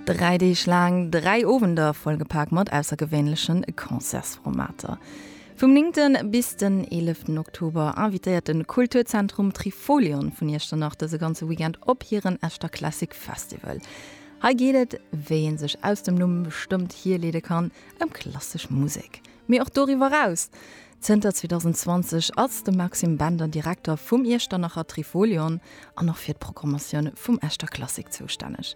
Dräi Deeg laang, dräi Owender vollgepak mat aussergewéinlechen Concertsformater. Vum 9. bis den 11. Oktober invitéiert den Kulturzentrum Trifolion vun Iechternach dëse ganze Weekend op hiren Echter Classic Festival. Hei geet et, wéi een sech aus dem Numm bestëmmt, hierleede kann, ëm klassesch Musek. Mee och doriwwer eraus. Zënter 2020 ass de Maxime Bender Direkter vum Iechternacher Trifolion an och fir d'Programmatioun vum Echter Klassik zoustänneg.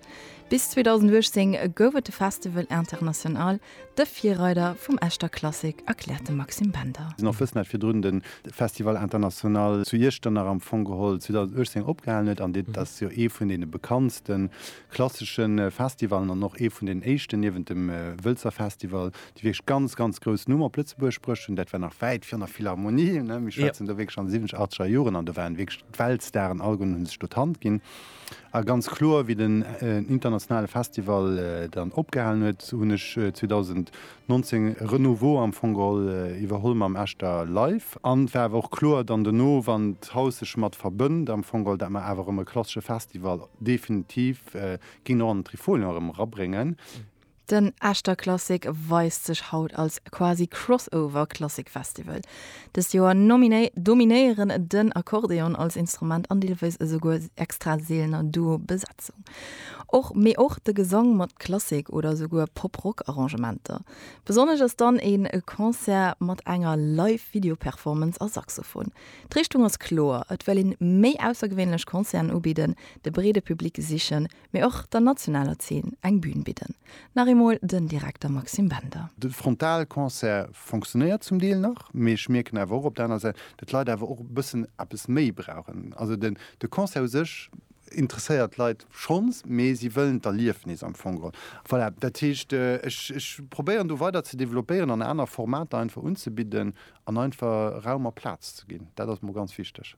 Bis 2018 gouf et de Festival International, de Virreider vum Echter Klassik, erkläert de Maxime Bender. An ofwëssend hat virdrun de Festival International zu Iechternach am Fong geholl 2018 opgehalen huet. An dat ass jo ee vun deene bekanntste klassesche Festivallen an och ee vun den éischten, niewent dem Wëlzer Festival, déi wierklech ganz, ganz grouss Numm op Lëtzebuerg bruecht hunn, dat war nach wäit virun der Philharmonie, ne, mir schwätzen do wierklech an de siwwenzeg, achtzeger Joren, an do waren wierklech d'Weltstaren all goen, hu sech do d'Hand ginn. A ganz kloer, wéi den internationale Festival dann opgehalen huet, hunn ech 2019 Renouveau am Fong geholl, iwwerholl mam Echter Live. An et war awer och kloer dann dono, wann d'Haus sech mat verbënnt, am Fong geholl, dat mer awer erëm e klassesche Festival definitiv géingen och an den Trifolion erëm erabréngen. Den Echter Klassik weist sech haut als quasi Crossover Klassik Festival. Dëst Joer nominéieren den Akkordeon als Instrument an deelweis esouguer extra seelener Duo Besetzung. Och mee och de Gesang mat Klassik oder esouguer Pop Rock Arrangementer. Besonnesch ass dann ee Concert mat enger Live Video Performance a Saxophon. D'Richtung ass kloer, et well een méi aussergewéinlech Concerten ubidden, de breede Public sichen, mee och der nationaler Zeen eng Bühn bidden. Nach eemol den Direkter Maxime Bender. De Frontalconcert fonctionnéiert zum Deel nach, mee ech mierken awer och op der aner Säit, datt d'Leit awer och e bëssen eppes méi brauchen. Also de Concert u sech interesséiert d'Leit schonns, mee si wëllen d'Erliefnis am Fong geholl. Voilà, dat heescht, ech probéieren do weider ze developpéieren an aner Formater einfach unzebidden an einfach Raum a Plaz ze ginn. Dat ass mer ganz wichteg.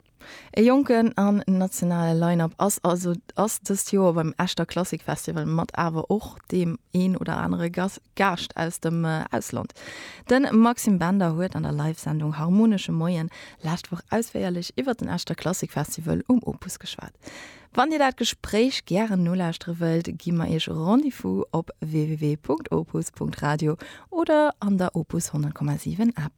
E jonken an nationale Line-Up ass also ass dëst Joer beim Echter Klassik Festival mat awer och deem een oder anere Gas Gaascht aus dem Ausland. De Maxime Bender huet an der Live-Sendung Harmonesche Moien lescht Woch ausféierlech iwwert den Echter Klassik Festival um Opus geschwat. Wann Dir dat Gespréich gären nolauschtere wëllt, gi mer Iech Rendez-vous op www.opus.radio oder an der Opus 100,7 App.